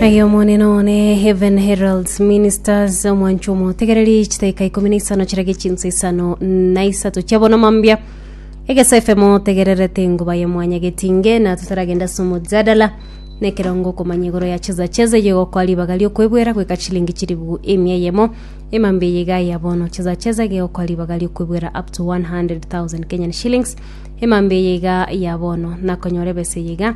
Aye omonene one Heaven Heralds Ministers omwancho omotegereri chitaika ikumi na isano chirage chinsa isano na isato chia bono mambia egesa efemo tegererete engoba ya mwanya getinge na tutaragenda ase omojadala na ekerongo okomanya igoro ya cheza cheza eye gokoa ribaga riokwebwera goika chilingi chiribu emia yemo emambia eye iga ya bono cheza cheza ege gokoa ribaga riokwebwera up to 100,000 Kenyan shillings emambia eye iga ya bono nakonyora ebesa eye iga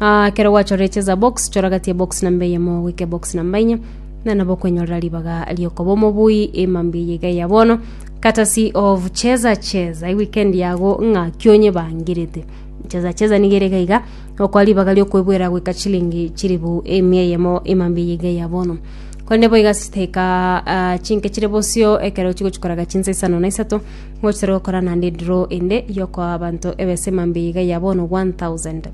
Ah, kero gwachoreche za box choragatie box namba eyemo goika box namba inye na nabo kwenyorera ribaga riokoba omobui emambi eye iga ya bono katasi of cheza cheza iweekend yago ng'a kionye bangirete cheza cheza niga ere iga iga okwa ribaga riokwebwera goika chilingi chiribu emia eyemo emambi eye iga ya bono korende boiga siteka ah, chinke chire bosio ekero chigochikoraga chinsa isano na isato Ngochire gokora naende edraw ende yokoa abanto ebesa emambia iga ya bono 1000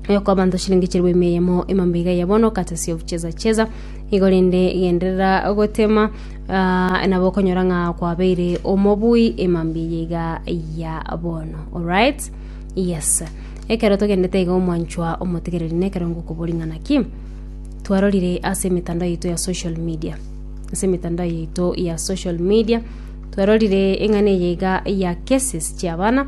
yokoa abanto chiringi chilifu ime eyemo emambia iga ya bono courtesy of cheza cheza igo rende genderera gotema ah, nabo okonyora ng'a kwabeire omobui emambia eye iga ya bono alright yes ekero togendete iga omwanchwa omotigereri nekero ngokobori ng'a naki twarorire ase emetandao yaito ya social media ase emetandao yaito ya social media Twarorire eng'ana eye iga ya cases chi'abana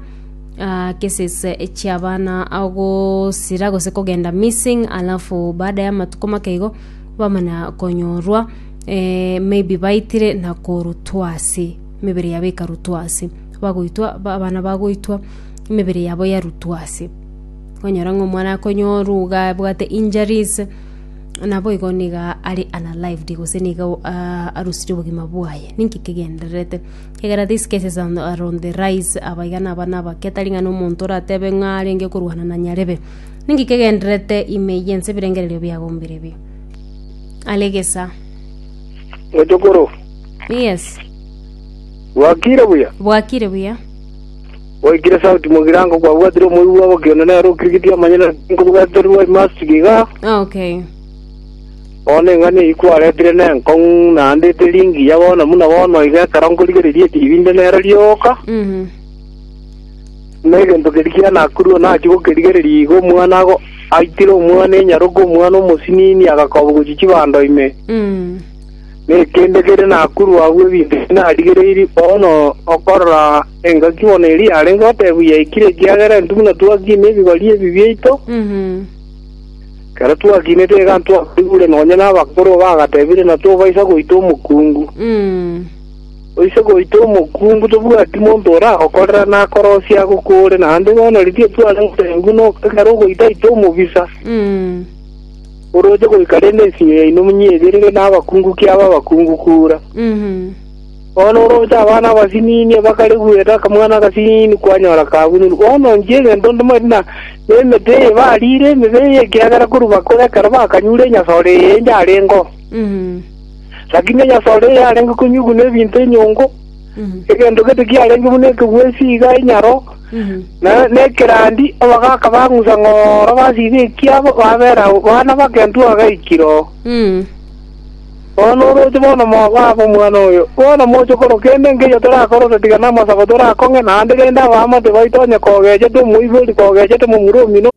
ah, cases eh, chi'abana agosira gose kogenda missing alafu baada ya matuko make igo bamana konyorwa eh, maybe baitire na korutwa ase emebere yabo ekarutwa ase bagoitwa ba- abana bagoitwa emebere yabo yarutwa ase okonyora ng'a omwana akonyorwa iga abwate injuries naboigo niga are unalived gose niga arosirie obogima bwaye. Ninki kegendererete? Egera these cases are on the rise aba iga naba nabake tari ng'a nomonto oratebe ng'a arenge korwana na nyarebe. Ninki kegendererete ime yense ebirengererio biago mbirebi? Are gesa. Mochokoro, Yes, bwakire buya? bwakire buya. Gwaikire sauti mogirango kwabwatire omoigwa obo kione nere okirigiti amanye naki nkobwaterwa I must be iga. Okay. Bono eng'ani eyio kwaretire nenkong'u naende eteri engiya bono buna bono iga ekero nkorigereria etibi inde nero rioka. Mhm. Buna egento keri kianakurwa nachia gokerigereria iga omwana ago aitire omwana enyaroka omwana omosinini agakobwa gochia chibando ime. Mm. Nekeende kere nakurwa agwo ebinto ebi narigereirie, bono okorora engaki bono eria yarenge otebwa yaikire ekiagera intwe buna twakiina ebibari ebi biaito, ekero twakinete iga ntwabaigure nonya nabakoro bagatebire na tobaisa goita omokungu. Toise goita omokungu tobwati monto ora okorera na akorosia agokore, naende bono riria etwarenge otebwa buna ekero ogoita ita omobisa. oroche goika rende ensinyo yaino monyeberire nabakungu kiabe abakungu kura. Bono oroche abana abasinini abakare goeta akamwana agasinini kwanyora kabunire. Bono inche egento ntomanyete na nemete eye bariire emebe eye ekiagera korwa bakore ekero bakanyure enyasore eye yarengeo. Lakini enyasore eye yarenge konyiguna ebinto enyongo, egento gete kiarenge buna ekegwesi iga enyaro, Na nekerandi abagaaka bang'usa ng'oro basiba ekiabo, babera agwo bana bagentu bagaikire oo. Bono oroche bono mobabe omwana oyo, bono moche okora kende nkeiyo torakore ase tiga namasabo torakong'e, naende rende abaamate baito onye kogechete omoibori kogechete momura omino,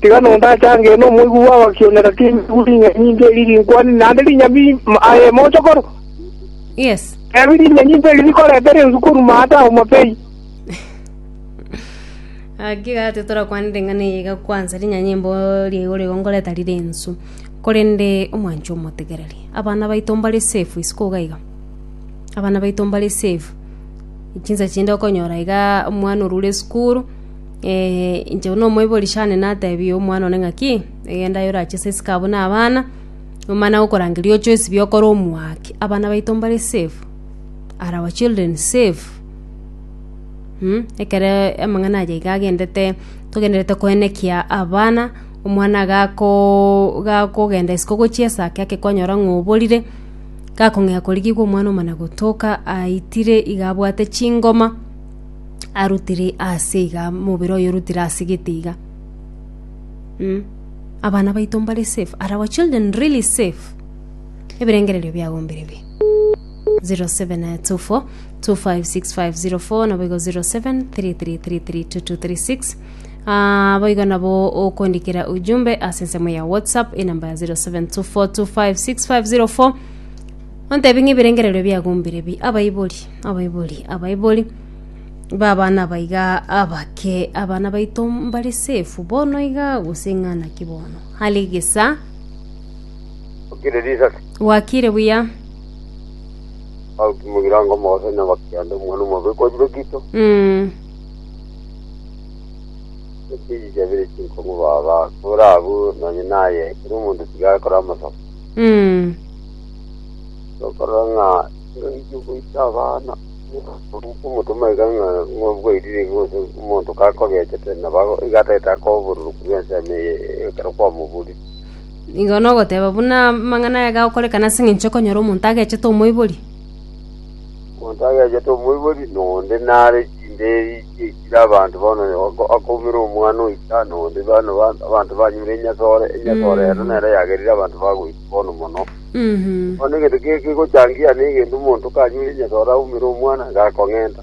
tiga nondachange nomoigwa bw'abakiomera timigu ring'ana nyinto eri rinkwane naende rinyami aye mochokoro. Yes. Ebi rinya nyinto eri rikoreta rensu koruma ata omotei. Aki gati torakwanire eng'ana eye iga kwansa rinyanyimbo riaigo rigo ngoreta rire ensu. Korende omwancho omotegereri. Abana baito mbare safe isiko iga iga. Abana baito mbare safe. Chinsa chinde okonyora iga omwana orure esukuru Ee, inche buna omoibori Shane nateebie omwana one ng'aki, egenda aye orache ase esika abwo na abana, omana agokorangeria oche oisibie okore omwake, abana baito mbare safe, are our children safe? Mh, ekero amang'ana aye iga agendete, togendererete koenekia abana, omwana gakoooo gakogenda isiko ogochia esaa ake ake kwanyora ng'a oborire, gakong'ea korigigwa omwana omana gotoka aitire iga abwate chingoma. arutire ase iga, omobere oye orutire ase gete iga, mm abana baito mbare safe? Are our children really safe? Ebirengererio biago mbire bii? 0724256504 nabo igo 0733332236 Ah, boigo nabo okondikera ujumbe ase ensemo ya whatsapp enamba ya 0724256504 ontebi ng'a ebirengererio biago mbire bii abaibori Abaibori Abaibori b'abana aba iga abake, abana baito mbare safe bono iga gose ng'a naki bono? Hali gesa okire risasi wakire buya aukimogira ngo mogose na bakiande omwana omobe kojire kito mm. ekiji jabire chinkongo baba kora abu nonye naye kiri omonto tiga akora amasako Mm. okora ng'a Nkaigwa goita abana okomotoma iga ng'a ng'oboirire iga gose omonto kakobechete nabo ago- iga atagete akoba obororoku bw'ensemo eye ekero kwamoborire. Igo nogoteba buna amang'ana aya gagokorekana ase eng'encho okonyora omonto agechete omoibori. Omonto agechete omoibori na onde nare chinderi chie chire abanto bono ako- akoumera omwana oita na onde bono ba- abanto banyure enyasore, enyasore ero nero yagerire abanto bagoita. bono mono. Bono egento kegegochangia nigende omonto kanyure nyesore aumere omwana, gakong'enta.